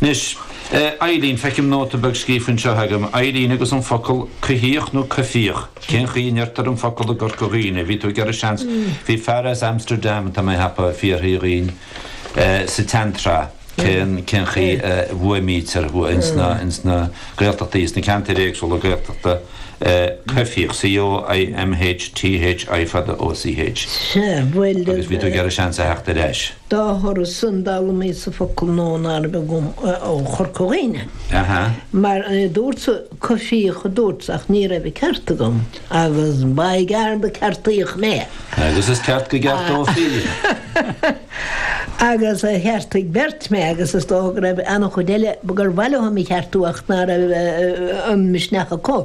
Anois, eh, Eilín, feicim nóta beag scríofa anseo agam, Eilín agus an focal coimhthíoch nó coimhthíoch, cén chaoi a ndeirtear an focal i gCorca Dhuibhne? Bhí tú ag iarraidh seans, bhí fear as Amsterdam, tá mé a cheapadh, a d'fhiafraigh dhínn, eh, sa tseantreath, cén, cén chaoi a bhfuaimnítear ins na, ins na Gaeltachtaí, ins na ceantair éagsúla Gaeltachta, eh, coimhthíoch, C-o-i-m-h-t-h-i fada, o-c-h. Sea, bhuel. Agus bhí tú ag iarraidh seans a theacht ar ais. Dá thoradh san, d'fhoghlaim mise focal nua ná raibh agam ó Chorca Dhuibhne. Mar dúrtsa coimhthíoch a dúrt, ach ní raibh an ceart agam, agus ba i gceart a ceartaíodh mé. Agus is ceart go gceartófaí. Agus cheartaigh beirt mé, agus is dócha go raibh an-chuid eile gur mhaith leo mé a cheartú ach ná raibh an misneach acu.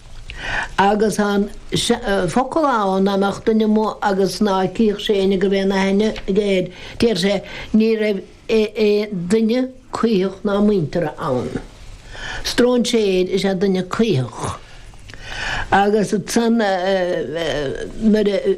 Agus tá an focal ann dá mbeadh duine amuigh agus ná cífeadh sé éinne go raibh aon aithne aige air, déarfadh sé ní raibh aon duine caothach ná muinteartha ann. Stróinséir is ea duine caothach. Agus ansan nuair a.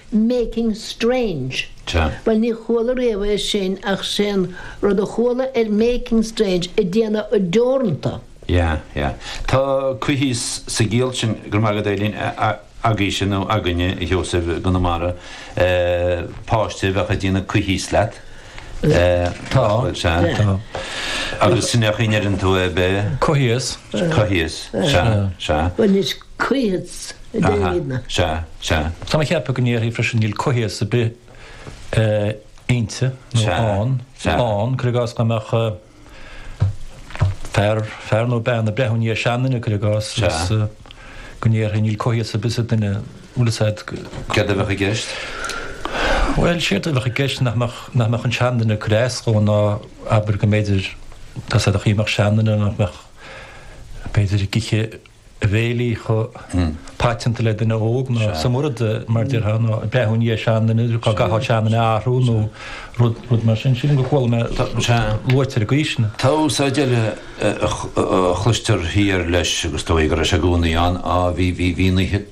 making strange. Bhuel, ní chuala riamh é sin ach sé'n rud a chuala ar making strange ag déanamh deoranta. Yeah, yeah. Tá coimhthíos sa gciall sin, go raibh maith agat Eilín, agaibhse nó againne a Sheosaimh i gConamara, páiste a bheadh ag déanamh coimhthíos leat. Tá, sea. Tá. Agus sin é an chaoi a ndeireann tú é b'ea? Coimhthíos. Coimhthíos. Sea. Sea. Bhuel, is. Coimhthíos a deirimidne. Sea, sea. Tá mé a cheapadh go ndéarfaí freisin níl coimhthíos ar bith inti, nó ann, ann, cur i gcás dá mbeadh fear, fear nó bean ag breathnú i ndiaidh seanduine, cur i gcás, agus go ndéarfaí níl coimhthíos ar bith sa duine, bhfuil a fhios agat. Céard a bheadh i gceist? Bhuel, séard a bheadh i gceist nach mbeadh, nach mbeadh an seanduine ag cur as dhó ná abair go mb'fhéidir, tá a fhios agat, an chaoi a mbeadh seanduine, nach mbeadh, b'fhéidir, ag ithe, bhéilí chomh paiteanta le duine óg nó sa mhurad, mar déarfá, nó ag breathnú i ndiaidh seanduine, dá gcaithfeá seanduine a athrú nó rud mar sin. Sin rud a chuala mé luaite ar an gcaoi sin. Tá úsáid eile a chloistear thiar leis agus is dóigh go raibh sé i gcónaí ann, á bhí, bhí, bhí na.